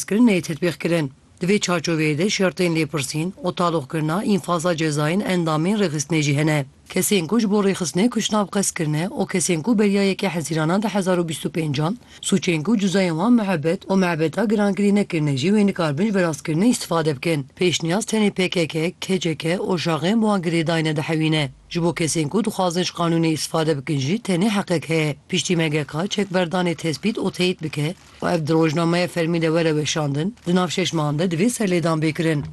kirin neyê tetbîqkirin. Di vê çarçoveyê de şertên lêpirsîn û taloqkirina înfaza cezayên endamên rêxistinê jî hene. Kesên ku ji bo rêxistinê kuşnav qez kirine û kesên ku beriya yekê hezîrana di hezar û bîst û pêncan sûcên ku cuzayên wan muhebet û mebeta girankirî nekirine jî wê nikaribin ji berastkirinê îstifade bikin. Pêşniyaz tenê pkk, kck û jaxên bi wan girêdayine dihewîne. Ji bo kesên ku dixwazin ji qanûnê îstifade bikin jî tenê heqek heye, piştî MGK çekberdanê tespît û teyît bike, Ku ev di rojnameya fermî de were weşandin, di nav şeş mehan de divê serlêdan bê kirin.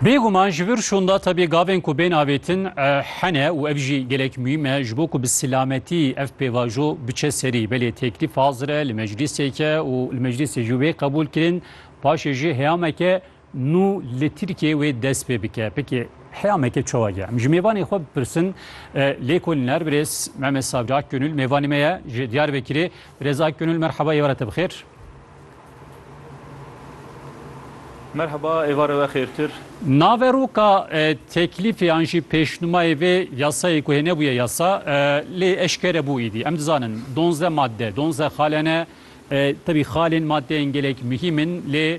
Bêguman ji vir şonda tabi gavên ku bên avêtin hene û ev jî gelek muhîm e ji bo ku bi silametî ev pêvajo biçe serî. Belê teklîf hazir e li meclîsê ke û li meclîsê jî wê qebûl kirin. Paşê jî heyameke Nû li Tirkiyeyê wê dest pê bike. Pekê heya me ke çawa ye? Em ji mêvanê xwe bipirsin. Lê ku niner birêz Mehmet Savcı Akgönül mêvanê me ye ji Diyarbekirê. Birêz Akgönül merheba êvara te bixêr. Merheba êvara we xêrtir. Naveroka teklîfê an jî pêşnumayê vê yasayê ku hêne bûye yasa lê eşkere bû îdî. Em dizanin donzdeh madde, donzdeh xale ne. Tevî xalên maddeyên gelek muhîm in lê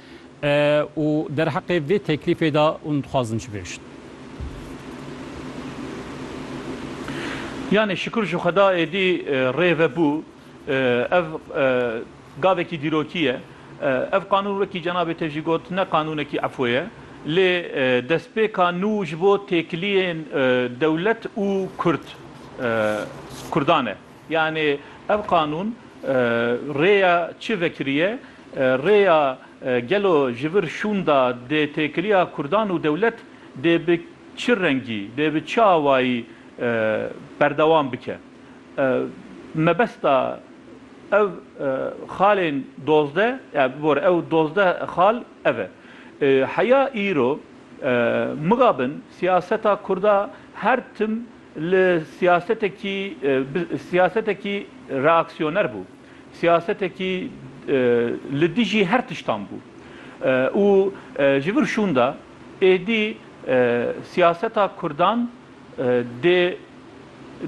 Û derheqê vê teklîfê de hûn dixwazin çi bêjin? Yanê şikur ji xweda êdî rê ve bû. Ev gavekî dîrokî ye. Ev qanûn wekî cenabê te jî got ne qanûnekî efwe ye. Lê destpêka nû ji bo têkiliyên dewlet û kurd kurdan e. Yanî ev qanûn rêya çi vekiriye? Rêya gelo ji vir şûnda dê têkiliya kurdan û dewlet dê bi çi rengî, dê bi çi awayî berdewam bike? Mebesta ev xalên dozdeh ya bibore ew dozdeh xal ev e. Heya îro mixabin siyaseta kurda her tim Li siyasetekî bi siyasetekî reaksiyoner bû. Siyasetekî li dijî her tiştan bû. Û ji vir şûnda êdî siyaseta kurdan dê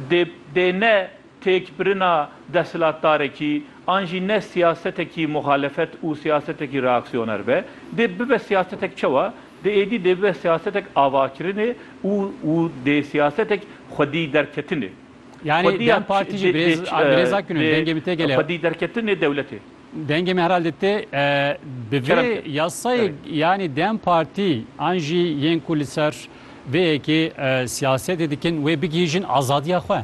dê dê ne Têkbirina desthilatdarekî an jî ne siyasetekî muxalefet û siyasetekî reaksiyoner be. Dê bibe siyasetek çawa? Di êdî dê bibe siyasetek avakirinê û û dê siyasetek xwedîderketinê. Yanî dem Partî jî birêz birêz Akgün in dengê min tê gelê. Xwedîderketinê dewletê. Dengê min herhalde tê. Bi vê yasayê yanî dem Partî an jî yên ku li ser vê yekê siyasetê dikin wê bigihîjin azadiya xwe.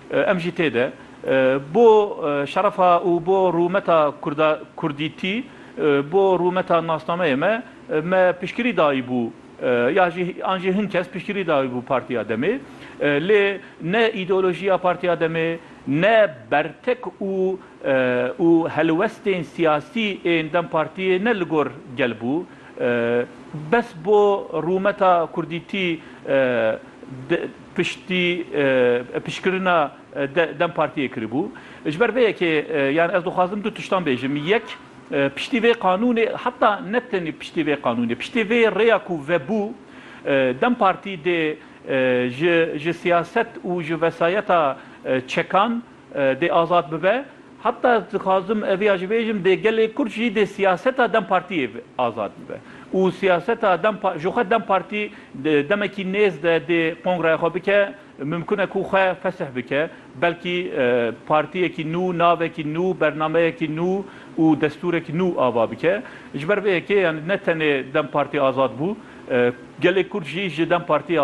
Em jî tê de bo şerefa û bo rûmeta kurda kurdîtî, bo rûmeta nasnameyê me, me piştgirî dayîbû ya jî an jî hin kes piştgirî dayîbû Partiya Demê. Lê ne îdeolojiya Partiya Demê, ne bertek û û helwestên siyasî ên dem Partiyê ne li gor gel bû. Bes bo rûmeta kurdîtî di. Piştî pişkirina dem partiyê kiribû. Ji ber vê yekê yan ez dixwazim du tiştan bêjim. Yek, piştî vê qanûnê heta ne tenê piştî vê qanûnê, piştî vê rêya ku vebû dem partî dê ji siyaset û ji vesayeta çekan Dê azad bibe. Heta dixwazim ev ya jî bêjim, dê gelê Kurd jî dê siyaseta dem Partiyê azad bibe û siyaseta dem ji xwe dem Partî demekî nêz de dê kongreya xwe bike, mimkun e ku xwe fesih bike, belkî partiyekî nû, navekî nû, bernameyekî nû û destûrek nû ava bike. Ji ber vê yekê ne tenê dem Partî azad bû, gelê Kurd jî ji dem Partiyê azad.